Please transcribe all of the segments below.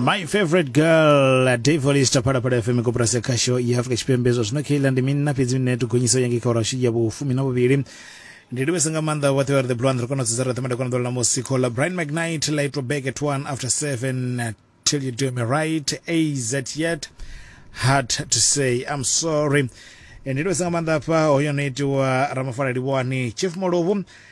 my favorite girl devolista phala phala fm kopurasi khasho ya afrika tshipembe zwa zwino khaila ndi mini na fhedzi mine tugonyisa yange kha urashi ya vhufumi na vhuvhili ndi livhisa nga maanḓa vhoṱhe vha re the blond ri kona u dzudza ra ṱemada kona ḓolela musi khola brian mcnight laitwa back at one after seven uh, till you do me right az yet hard to say i'm sorry ndi livhisa nga maanḓa hafha hoyo no itiwa ramafala livhani chief molovu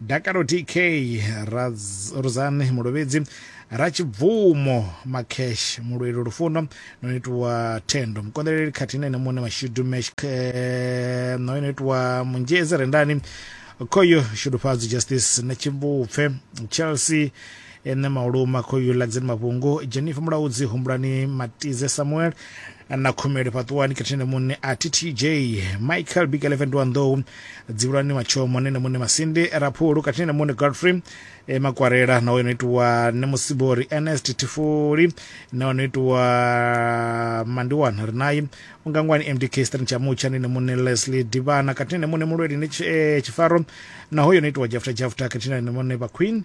Dakalo TK Ruzani Mulovhedzi Ratshibvumo Makesh Mulweli Lufuno no itiwa Thendo Mukonḓeleli khathihi na ene muṋe Mashudu Mesh no itiwa Munzhezi Rendani Khoyo Shudufhadzi Justice na Tshimbupfe Chelsea Ene Mauluma khoyu ḽa Dzini Mavhungu, Jennifer Mulaudzi, Humbulani Matize, Samuel na Khumeli Fhaṱuwani, Khethinene Munne a TTJ, Michael Big Elephant wa Nḓou, Dzivhulani Matshomo, Nene Munne Masindi, Raphulu, Khethinene Munne Godfrey e Makwarela na ono itiwa Nne Musibori, Ernest Tifuli na ono itiwa Mandiwana Rinayi, Ungangwani MDK, Stan Chamutsha, Nene Munne Leslie Divana, Khethinene Munne Mulweli ne Tshifaro na hoyo no itiwa Jafta Jafta, Khethinene Munne Vha Queen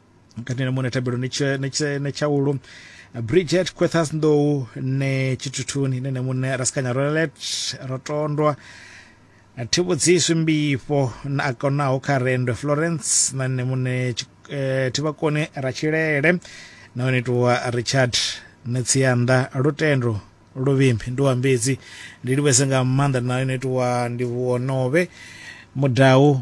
kati na mune thabelo ni tshe- ni tshe- ni tshaulu bridget quethas ndou ne tshithuthuni ine ne mune rasikanya rolet rotondwa thivhudziswi mbifho na a konaho kha rendo florence na nne mune tshi- eh, thivhakoni ra tshilele na one tuwa richard ne tsianda lutendo luvimbi ndi wa mbedzi ndi livhese nga maanḓa na one tuwa ndi vhuonove mudau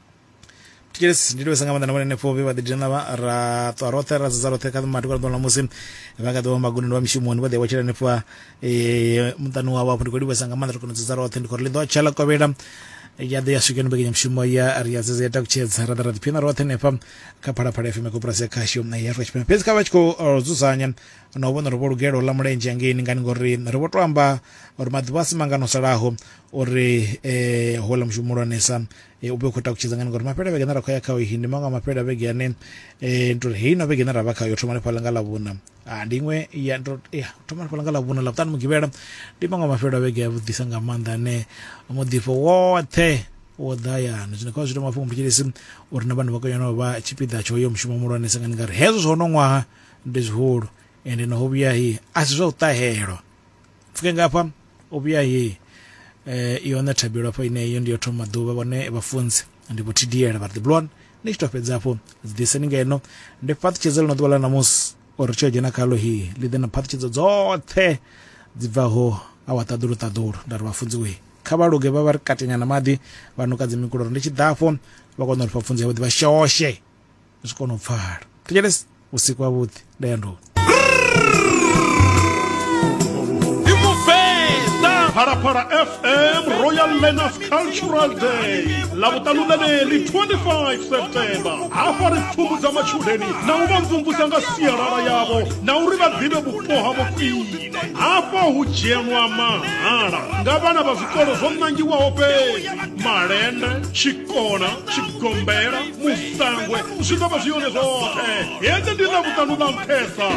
tikelesi ndi livhesa nga maanḓa na vhone henefho vhe vha ḓi dzhena vha ra ṱwa roṱhe ra dzedza roṱhe kha maḓuvha ḓuvha ḽa musi vha kha ḓivha magundoni vha mishumoni vha ḓi vha tshela henefho eh, muṱani wavho hafho ndi khou livhesa nga maanḓa ri kona u dzedza roṱhe ndi khou ri ḽi ḓo tsha ḽa kovhela ya ḓo ya swikeni mbekanyamushumo ya ri ya dzedza ya takutshedza ra ḓa ra ḓiphina roṱhe henefha kha phalaphala fm ya koporasi ya khasho na ya afrika tshipembe fhedzi kha vha tshi khou eh, dzudzanya na u vhona uri vho lugela u ḽa mulenzhe hangeini ngani ngori ri vho to amba uri maḓuvha a si mangano salaho uri eh, houḽa mushumo muhulwanesa e, u vhe u khou takutshedza ngani ngori mafhelo a vhege ane ra khou ya khao ndi maṅwe a mafhelo a vhege ane um ndi uri heyi no vhege ine ra vha khayo thoma lifhala nga ḽavhuna ah, ndi iṅwe ya thoma lifhala nga ḽavhuna ḽa vhuṱanu mugivhela ndi maṅwe a mafhelo a vhege a vhuḓisa nga maanḓa ane muḓifho woṱhe wo ḓayana zwino kha zwi ita mafhungo mthetshelesi uri na vhana vha koyana vha tshipiḓa tsho yo mushumo muhulwanesa ngani ngari hezwo zwo no ṅwaha ndi zwihulu ende naho vhuya hi a si zwa u ṱahelwa pfuke nga hafha o vhuya he eh i hone thabelo hafho ine iyo ndi yo thoma ḓuvha vhone vhafunzi ndi vho tdl vha ri ḓiblon ni tshi to fhedza hafho ḓiseni ngeno ndi fhaṱutshedza ḽino ḓuvha ḽa ṋamusi uri tsho dzhena khalo hi ḽi ḓe na phaṱhutshedzo dzoṱhe dzi bvaho awa ṱaḓulu ṱaḓulu nda ri vhafunzi we kha vha luge vha vha ri katenya na maḓi vha nuka dzi mikulo uri ndi tshi ḓafho vha kona uri pfapfunzi yavhuḓi vha shoshe zwi kona u pfala thetshelesi vhusiku havhuḓi nda ya nduni phalaphala fm royal learners cultural day ḽavhuṱanu ḽeneli 25 september hafha ri pfumudza matshudeni na u vha mvumvusa nga sialala yavho na uri vha ḓivhe vhupo havho khwine hafha hu dzhenwa mahala nga vhana vha zwikolo zwo nangiwaho fhedzi malende tshikona tshigombela musangwe zwi ḓo vha zwi yone zwoṱhe hedzi ndi na vhuṱanu na nṱhesa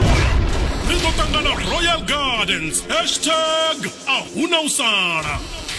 ri ḓo ṱangana royal gardens hashtag a huna u sala